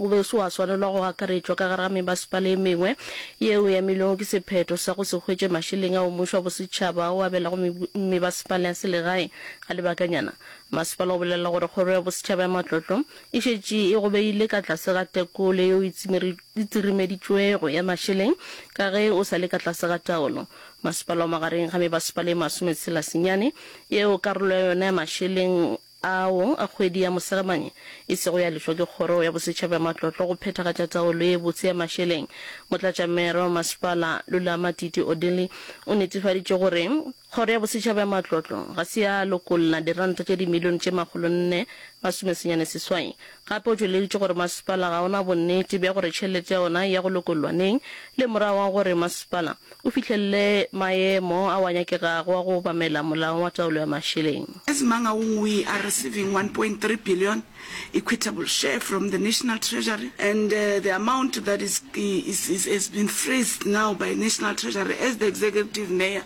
O be o se wa swanelwa go akaretšwa ka gare ga mebasepala e mengwe yeo e amilwego ke sephetho sa go se hwetše mašeleng ao mmušo wa bosetšhaba a o abelago mebasepala ya selegae. Ga lebakanyana, masepala o bolelela gore Kgoro ya Bosetšhaba ya Matlotlo e šetše e go beile ka tlase ga tekolo yeo e tsirimeditšwego ya mašeleng ka ge o sa le ka tlase ga taolo. Masepala o magareng ga mebasepala e masometshela senyane yeo karolo ya yona ya mašeleng ao a kgwedi ya Mosegamane e sego ya lefšwa ke Kgoro ya Bosetšhaba ya Matlotlo go phethagatša taolo ye botse ya mašeleng, Motlatšamero wa Masepala Lulama Titi Odili o netefaditše gore Kgoro ya Bosetšhaba ya Matlotlo ga se ya lokolla diranta tše dimilione tše makgolo nne masomesenyane seswai Gape o tšweleditše gore masepala ga o na bonnete bja gore tšhelete ya ona e ya go lokollwa neng le morago ga gore masepala o fihlelele maemo ao a nyakegago a go obamela Molao wa Taolo ya Mašeleng. As Mangaung we are receiving one point three billion equitable share from the National Treasury and the amount that is is has been freezed now by National Treasury as the Executive Mayor.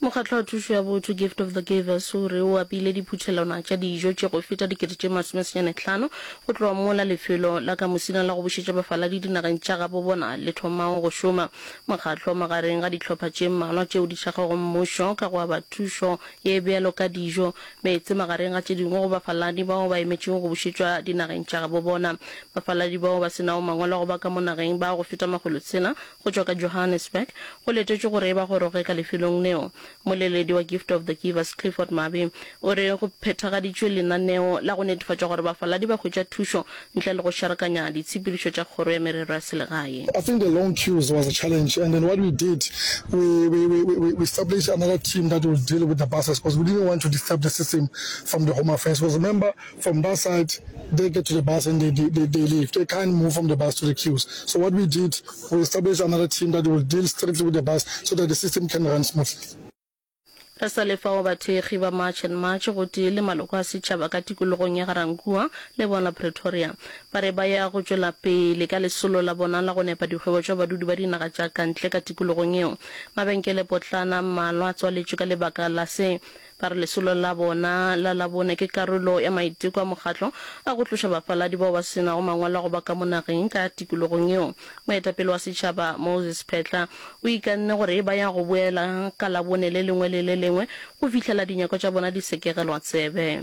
Mokgatlo wa Thušo ya Botho, Gift of the Givers, o re o apile diphuthelwana tša dijo tše go feta dikete tše masomesenyane tlhano go tloga mola lefelo la ka mosina la go bušetša bafaladi dinageng tša gabo bona le thomago go šoma. Mokgatlo o magareng ga dihlopha tše mmalwa tšeo di šagago mmušo ka go aba thušo ye bjalo ka dijo, meetse magareng ga tše dingwe go bafaladi bao ba emetšego go bušetšwa dinageng tša gabo bona. Bafaladi bao ba se nago mangwalo a go ba ka mo nageng ba go feta makgolo tshela go tšwa ka Johannesburg, go letetšwe gore e ba goroge ka lefelong leo. Moleledi wa Gift of the Givers, Clifford Mabi, o re go phethagaditšwe lenaneo la go netefatša gore bafaladi ba hwetša thušo ntle le go šarakanya ditshepedišo tša Kgoro ya Merero ya Selegae. I think the long queues was a challenge and then what we did we we we we we established another team that will deal with the buses because we didn't want to disturb the system from the Home Affairs because remember from that side they get to the bus and they, they, they leave. They can't move from the bus to the queues. So what we did, we established another team that will deal strictly with the bus so that the system can run smoothly. Re sa le fao bathekgi ba March and March gotee le maloko a setšhaba ka tikologong ya Ga-Rankuwa le bona Pretoria ba re ba ya go tšwela pele ka lesolo la bona la go nepa dikgwebo tša badudi ba dinaga tša kantle ka tikologong yeo. Mabenkele potlana mmalwa a tswaletšwe ka lebaka la se Ba re lesolo la bona la Labone ke karolo ya maiteko a mokgatlo a go tloša bafaladi bao ba se nago mangwalo a go ba ka mo nageng ka tikologong yeo. Moetapele wa setšhaba Moses Phetla o ikanne gore ba ya go boela ka Labone le lengwe le le lengwe go fihlela dinyakwa tša bona di sekegelwa tsebe.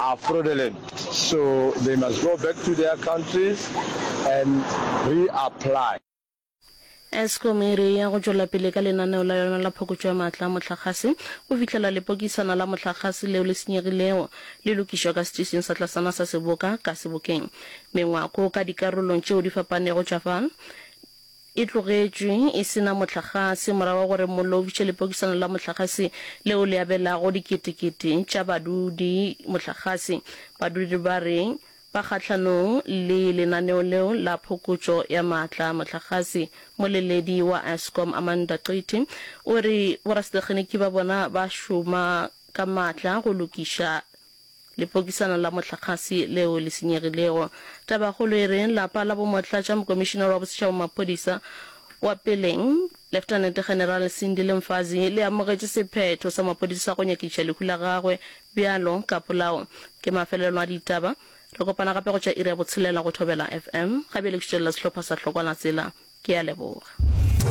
are fraudulent so they must go back to their countries and reapply. Eskom e re e ya go tšwela pele ka lenaneo la yona la phokotšo ya maatla a mohlagase go fihlela lepokisana la mohlagase leo le senyegilego le lokišwa ka setišing sa tlasana sa Seboka ka Sebokeng. Mengwako ka dikarolong tšeo di fapanego tša fa e tlogetšwe e se na mohlagase morago ga gore mollo o fiše lepokisana la mohlagase leo le abelago diketekete tša badudi mohlagase. Badudi ba re ba kgahlanong le lenaneo leo la phokotšo ya maatla a mohlagase. Moleledi wa Eskom, Amanda Qiti, o re borasetekgeniki ba bona ba šoma ka maatla go lokiša Lepokisana la mohlagase leo le senyegilego. Tabakgolo e reng lapa la bomotlatša mokomišinara wa bosetšhaba maphodisa wa peleng, Leftenente General Sindile Mfazi, le amogetše sephetho sa maphodisa sa go nyakiša lehu la gagwe bjalo ka polao. Ke mafelelo a ditaba. Re kopana gape go tšwa iri ya botshelela go Thobela FM. Gabjale ke šutelela sehlopha sa Hlokwana Tsela. Ke a leboga.